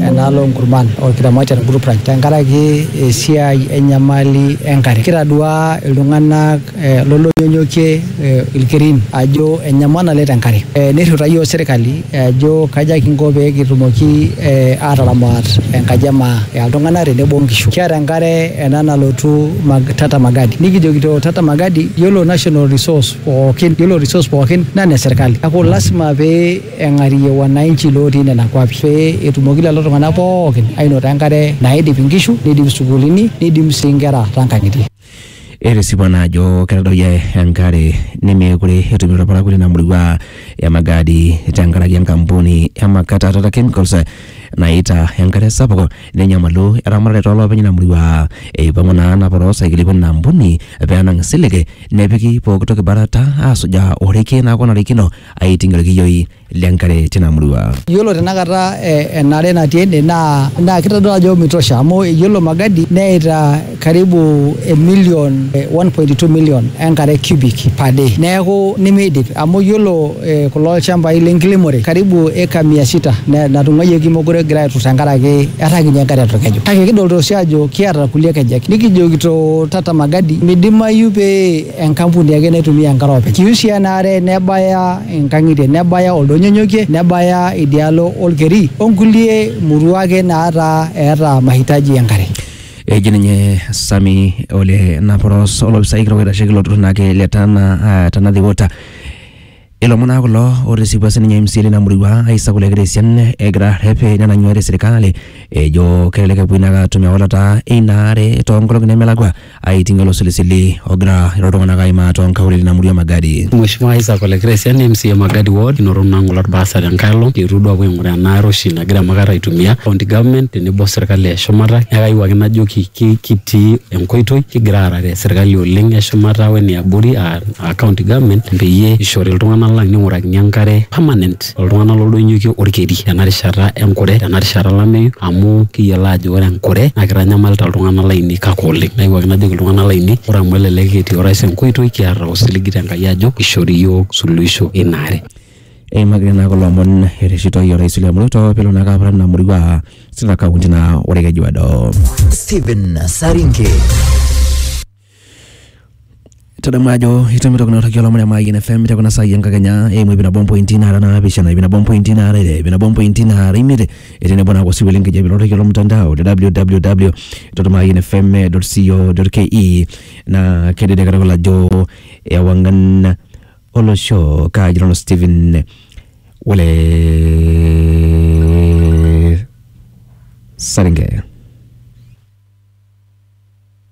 enaalo onkurman olkiromat te group ranch tenkaraki esiai enyamali enkare. Kitaduaa iltung'anak eh lolonyonyokie eh ilkerin ajo enyamal naleng tenkare eh nirriwuta iyiok sirkali ajo kaja kinko pekitumoki eh ataramat enkaji emaa eltung'anak tenebo onkishu kiata enkare ena nalotu mag Tata Magadi nikijokito Tata Magadi yiolo national resource pookin yiolo resource pookin naa ene sirkali niaku lasima pee. eng'arie wananchi lootii nena kuapi pee etumoki lelo tung'anak pookin ainoto enkare naidip inkishu, neidip isukuulini, neidim sii inkera too nkang'itie. Etisipa naa ajo ketadoyie enkare nemeekure etum ilparakuo lina murua e Magadi tenkaraki enkampuni e Makata Tata Chemicals naita enkare sapuk nenyamalu eramatare too loopeny ina murua. Eipang'u naa napa too saikili pooki ina ampuni pee enang' isilig nepiki pooki toki barata aasujaa orekie naa apa onarikino. aiting ilkiyioi le nkare tina murua. Yiolo tenakata enare natii ene naa naa kitodolu ajo mitosha amu yiolo Magadi neita karibu emilion 1.2 million enkare cubic per day. Neeku nemeidip amu yiolo kulo shambai le nkiremore karibu eka mia sita natung'uayioki meekure egira aairrut tenkaraki etaa kinyi enkare olkeju. Kake kidolita oshi aajo kiata kulie kejek nikijokito tata Magadi midimayu pee enkampuni ake naitumia enkare openy. Kiusia ena are nebaya inkang'itie, nebaya oldonyonyokie, nebaya idialo olkeri o nkulie murua ake naataa eeta mahitaji enkare. Eji ninye Sami Ole Naporos olopisai kitok oitasheki ilo turrur naake le Tana, uh, Tana Water. Ilomon naa kulo otisipua sininye MCA lina murua Isaac Ole Kitesian egira arrep nenang'ua te serikali ejo kelelek epuoi naake atum ewalata eina are toonkolong'i nemelakua aiting olosilisili ogira ilo tung'anak aimaa toonkaulele ina murua e Magadi. Mheshimiwa Isaac Ole Kitesian MCA Magadi Ward inoto naa ng'ole olbarasa tenkae olong kiyetuo duo aapuo aing'uraa ena are oshi nagira emakar aitumia county government tenebo o serikali e shumata neeku kayieu ake najoki kitii enkoitoi kigira aarare serikali oleng e shumata wene abori aa aa county government peyie ishori iltung'anak lang ning'urakini enkare permanent oltung'anak loldonyokie orkeri tena rishata enkure tena rishata olameyu amu kiyiolo aajo ore enkure naa kitanyamalita iltung'anak lainei kake oleng nayewuaki najoki iltung'anak lainei ore amu elelek etii orais enkoitoi kiata osiligi te Enkai ajo ishori iyiook suluhisho ina are. Eimaki taa naa kulo omon ereshitoi orais William Ruto pelo naake aparan ina murua aa Siaya county naa ore Kejuado. Stephen Saringe. tadamu ajo itumito kuna toki olomon e Mayian FM te kuna saai enkakenya eimu iip nabo ompointi naara naapishana iip nabo ompointi naara ile iip nabo ompointi naara imiet tenebo naa osiwuo lenkijape lorrekie lomtandao le www dot mayian fm dot co dot ke naa kedede katukul ajo ewang'an olosho kaaji nanu Stephen Wole Saringe.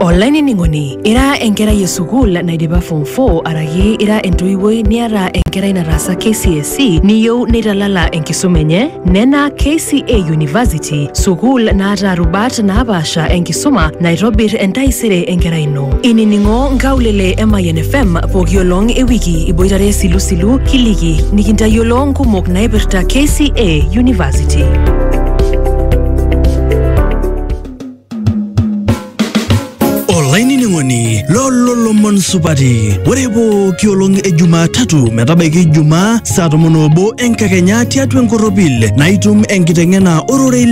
Olainining'oni, ira enkerai e sukuul naidipa form 4 araki ira entoiwuoi niata enkerai nataasa KCSE niyieu neitalala enkisuma enye? Nena KCA University, sukuul naata rubat naapaasha enkisuma naitobir entaisere enkerai ino. Inining'o nkaulele e Mayian FM pooki olong e wiki iboitare isilusilu kiliki nikintayiolo nkumok naipirta KCA University. olainining'oni loololomon supati ore pooki olong e jumatatu metabaiki ijumaa saa tomon oobo enkakenya tiatua enkorropil naitum enkiteng'ena ororei